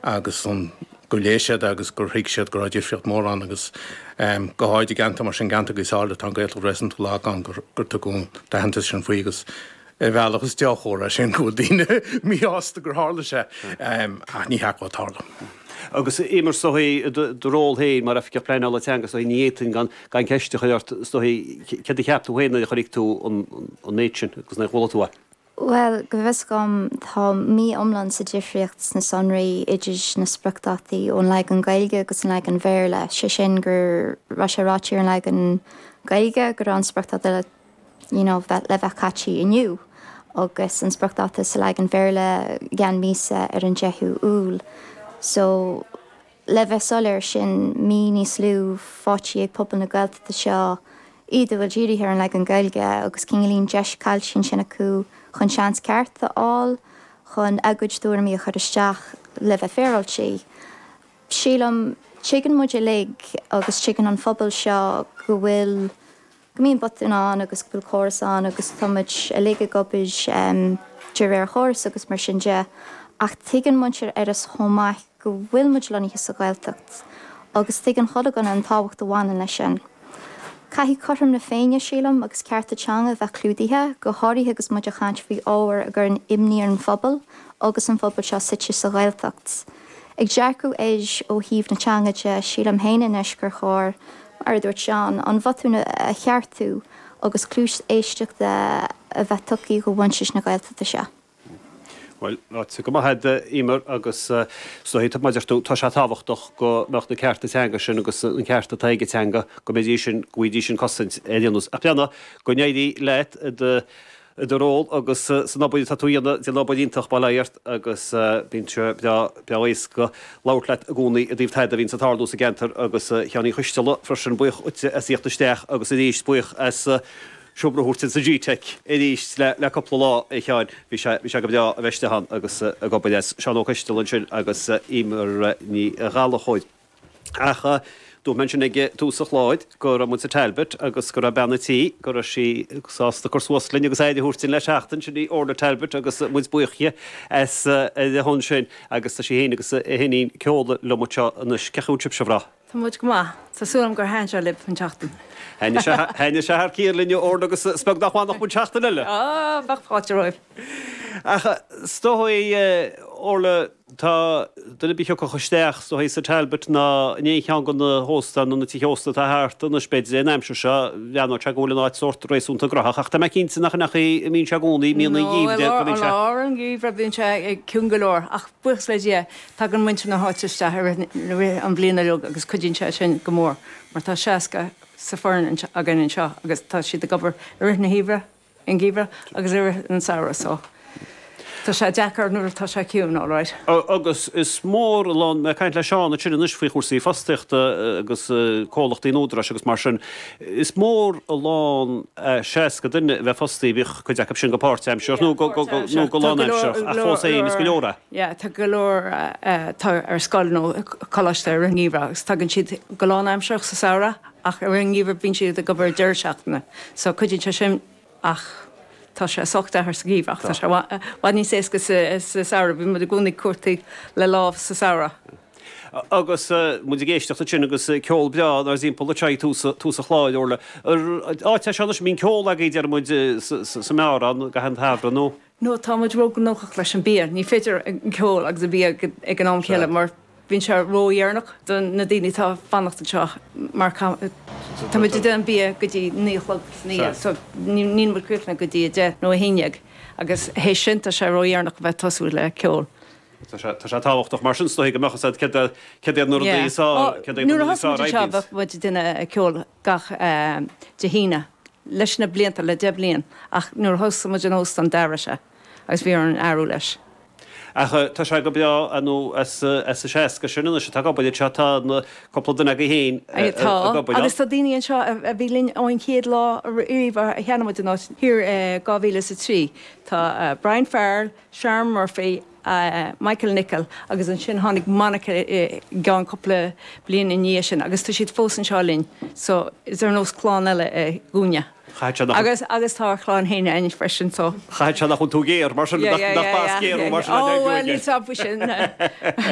agus gur léigh siad agus gur thuig siad go raibh difríocht mhór ann agus go háirid i gceantar mar sin, an ceantar is áirid atá an Ghaeilge réasúnta lag ann, gur tugadh an t-aitheantas sin faoi agus ar bhealach is dea-chomhartha é sin go bhfuil daoine míshásta gur tharla sé ach ní ceart go dtarlódh. Agus Emer is dóigh, i do ról féin mar Oifigeach Pleanála Teanga is dóigh ní fhéadfainn gan ceist a chur ort is dóigh, céard a cheap tú féin nuair a chonaic tú an méid sin agus nuair a chuala tú é? Bhuel, go bhfios dhom, tá mí iomlán sa difríocht sna sonraí idir na spriocdhátaí ón leagan Gaeilge agus an leagan Bhéarla, sé sin gur raibh sé ráite ar an leagan Gaeilge go raibh an spriocdháta le, you know, bheith, le bheith caití inniu, agus an spriocdháta sa leagan Bhéarla i gceann míosa ar an deichiú Iúil. So, Le bheith soiléir, sin mí níos lú fáite ag pobal na Gaeltachta seo, iad a bhfuil dírithe ar an leagan Gaeilge, agus go gcailleann deis caillte ansin acu chun seans ceart a fháil chun a gcuid tuairimí a chur isteach, le bheith féaráilte. Sílim, tuigeann muid uilig, agus tuigeann an phobal seo, go bhfuil. go mbíonn botúin ann agus go bhfuil córas ann agus tá muid uilig ag obair de réir chórais agus mar sin de ach tuigeann muintir Iorrais chomh maith go bhfuil muid lonnaithe sa Ghaeltacht agus tuigeann chuile dhuine an tábhacht a bhaineann leis sin. Caithfidh cothrom na Féinne, sílim, agus cearta teanga a bheith clúdaithe, go háirithe agus muid ag caint faoi ábhar a chuireann imní ar an phobal agus an phobal seo suite sa Ghaeltacht. Ag dearcadh air ó thaobh na teanga de, sílim féin anois gur chóir, mar a dúirt Seán, an bhotún a cheartú agus cluas éisteachta a bheith tugtha do mhuintir na Gaeltachta seo. Bhuel, ráite go maith a'd, Emer, agus is dóigh, tá, mar a deir tú, tá sé tábhachtach go mbeadh na cearta teanga sin agus an ceart atá ag an teanga, go mbeidís sin, go bhfaighidís an cosaint a theastaíonns. Ach ar aon nós, go n-éirí leat i do. i do ról agus san obair atá tú a dhéanamh, ag déanamh obair iontach, bail ó Dhia ort agus bíonn sé breá, breá éasca labhairt leat i gcónaí i dtaobh tada a bhíonns ag tarlú sa gceantar agus Sheáin Uí Choisteala freisin, buíoch díotsa as thíocht isteach agus aríst buíoch as seomra a thabhairt dúinn sa gteic aríst le, le cupla lá a Sheáin, bhí sé, bhí sé go breá a bheith istigh ann agus ag obair as Seán Ó Coisteala ansin agus Emer Ní Ghallachóir. Ach dúirt mé ansin ag tús an chláir go raibh muid sa Talbot agus go raibh bean a' tí, go raibh sí sásta cur suas linn agus aire a thabhairt dinn le seachtain, sin í Orla Talbot agus muid buíoch di as ucht sin agus tá sí fhéin agus a hiníon Keola liom anseo anois. Cén chaoi a bhfuil sibhse a mhná? Tá muid go maith. Tá súil agam gur thaitin sé libh an tseachtain. Thaitin sé thar cionn linn, a Orla, agus is beag nach bhfanfadh muid seachtain eile! Ó, bheadh fáilte romhaibh. Ach is dóigh, a Orla, Duine ar bith a thiocfadh isteach sa Teach Talbot ná in aon cheann de na hóstáin nó na tithe ósta atá thart anois, b'fhéidir, an aimsir seo, bhreathnódh sé go bhfuil an áit sórt réasúnta gnoitheach, ach tá mé cinnte nach in é an chaoi a mbíonn sé i gcónaí, mbíonn an geimhreadh. No, i lár an gheimhreadh bíonn sé ciúin go leor, ach buíochas le Dia, tagann muintir na háite isteach i rith, i rith an bhliain uilig agus cuidíonn sé sin go mór mar tá 60 sa foireann againn anseo agus tá siad ag obair i rith na heimhreadh. an gheimhreadh agus i rith an samhradh so tá sé deacair nuair atá sé ciúin alright. Agus is mór an lán, mé ag caint le Seán ansin anois faoi chúrsaí fostaíochta agus comhlachtaí an Údaráis agus mar sin, is mór an lán 60 duine a bheith fostaithe, bíodh cuid acu sin go páirtaimseartha nó go lánaimseartha ach fós féin is go leor é. Yeah tá go leor atá ar scoil nó coláiste i rith an gheimhreadh agus tagann siad go lánaimseartha sa samhradh Ach sa ngeimhreadh bíonn siad ag obair deireadh seachtaine so cuidíonn sé sin ach tá sé sách deacair sa gheimhreadh ach tá sé i bhfad níos éasca sa samhradh, bíonn muid i gcónaí ag cuartú lámh sa samhradh. Agus muid ag éisteacht ansin agus ceol breá inár dtimpeall ag tús an chláir, Orla. Áit é seo anois a mbíonn ceol agaibh deir muid sa mbeár ann gach aon samhradh nó? No, tá muid ró-ghnóthach leis an bia, ní féidir an ceol agus an bia ag an am céanna mar bíonn sé ró-dheireanach do na daoine atá ag fanacht anseo mar tá muid ag déanamh an bia go dtí naoi a chlog san oíche so níl muid críochnaithe go dtí a deich nó a haon dhéag agus théis sin tá sé ró-dheireanach a bheith ag tosú le ceol. Tá sé tábhachtach mar sin is dóigh go mbeadh a fhios agat céard iad na rudaí is. Nuair a thosaigh muid anseo bhíodh muid ag déanamh ceol, gach Dé hAoine leis na blianta, le deich bhliain, ach nuair a thosaigh muid an óstan d'athraigh sé agus bhí orainn athrú leis. Ach tá sé go breá. Nó as a seasca sin anois atá ag obair anseo, tá cúpla duine agaibh féin ag obair ann. Tá, agus tá daoine anseo a bhí linn ón chéad lá riamh a cheannaigh muid an áit thiar i 2003, tá Brian Farrell, Sharon Murphy, Michael Nicholl agus ansin tháinig Monica i gceann cúpla bliain ina dhiaidh sin agus tá siad fós anseo linn so is sórt ar nós clann eile é dhúinne agus tá ár chlann fhéin ann freisin so. Caithfidh sé nach bhfuil tú géar mar sin, nach mbeadh a fhios agat. Ó bhuel ní stopfaidh sin.